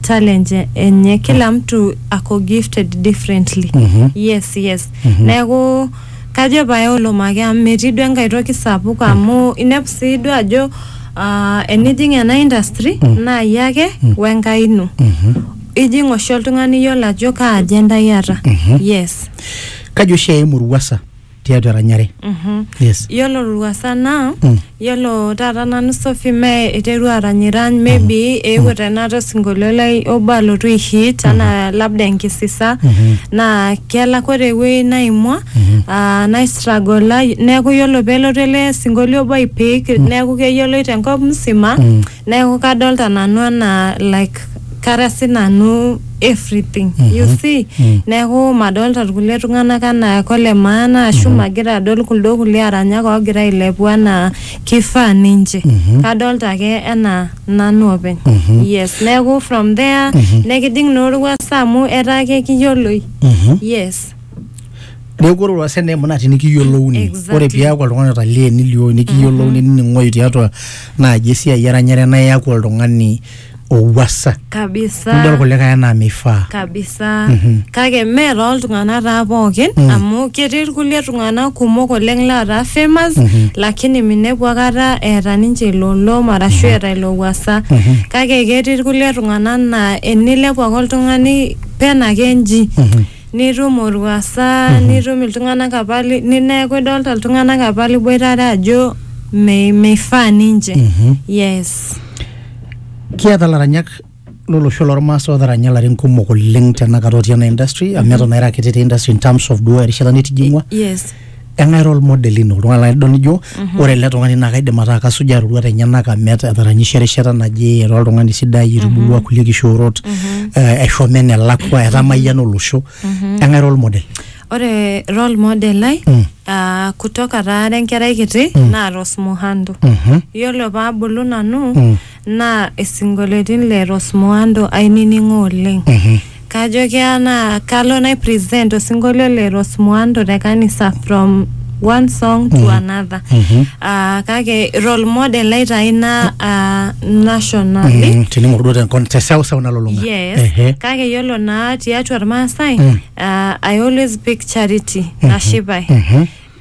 talent enye kila mtu ako gifted differently Mhm. yes yes Mhm. neeku kajo pae olomake amu metii duo enkae toki sapuk amu inepu sii duo ajo ah, enijing ena industry naa iyie ake wenkai ino Mhm. ijing oshi oltung'ani iyiolo ajo kaa agenda iyata yes kaji oshi eimu ruasa tiatua eranyare yes Yiolo Ruasa naa Mm. yiolo taata nanu Sophie mee iterua aranyirany maybe eewuo tenakata osinkolio lai obo alotu ai hit anaa labda enkisisa naa kelak ore ewuei naimua ah, naistragola neeku yiolo peelotu ele sinkolio obo aipik neeku keyioloi tenkop msima Neeku kadolta nanu anaa like kara sinanu everything you see neeku madolta irkulie tung'anak anaa kole maana ashu magira adol kuldo kulie aranyak oogira ailepu anaa kifaa ninche kadolta ake enaa nanu openy yes neeku from there nekijing naa orwuasa amu etaa kekiyioloi yes neeku ore olwuasa naa emunati nikiyiolouni Exactly. ore piaku oltung'ani otalie nilioyu nikiyiolouni nining'oyu tiatua naaji esiai eranyare naa iaku oltung'ani owuasa nidol kabisa kulikae enaa meifaa kabisa Mhm. kake mee tooltung'anak taa pookin Mm. amu ketii irkulie tung'anak kumok oleng lootaa famous Mhm. lakini minepu akata eeta ninche ilo olom arashu eeta ilo wuasa Mhm. kake ketii irkulie tung'anak naa enilepu ake oltung'ani pena ake nji Mhm. nitum olwuasa nitum iltung'anak apa li- ni- neeku idolta iltung'anak apa liboitare ajo mei- meifaa ninche Mhm. yes kiata laranyak lolosho lormaasai otaranya larin kumok oleng tenakata otii ena industry amu eton aira kiti te industry in terms of duo erishata nitijing'ua yes eng'ae role model ino oltung'ani laa idol nijo ore ele tung'ani naa kaidim ataa kasujaa iroruat enyenak amu eta- etaranyishe erishata naje etaa oltung'ani sidai etubulua kulie kishoorot eh, eshomo enelakua etamayiana olosho eng'ae role model ore role model ai Mm. ah, kutoka taara enkerai kiti Mm. naa Rose Muhando Mhm. yiolo paabulu nanu Mm. naa isinkolioitin le Rosmuando ainining'o oleng. Kajo keya naa kalo nai present osinkolio le Rosmuando te kanisa from one song to another. Ah, kake role model lai taa ina ah, nationally. Mm, tining'or duo tenkon te seuseu nalulung'a Yes. Ehe. Kake yiolo naa tiatua Irmaasai, ah, I always pick charity, nashipae.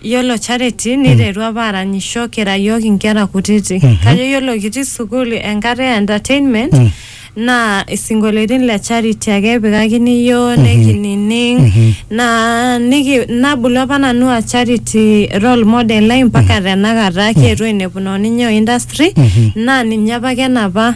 Yiolo Charity niterua apa aranyisho kira yiok inkera kutiti. Kajo yiolo kitii sukuul enkata e entertainment naa isinkolioitin le Charity ake epikakini yiok nekinining naa niki nabulu apa nanu aa Charity role model ai mpaka tenakata. Kietuo ainepuno ninye o industry naa ninye apake enapa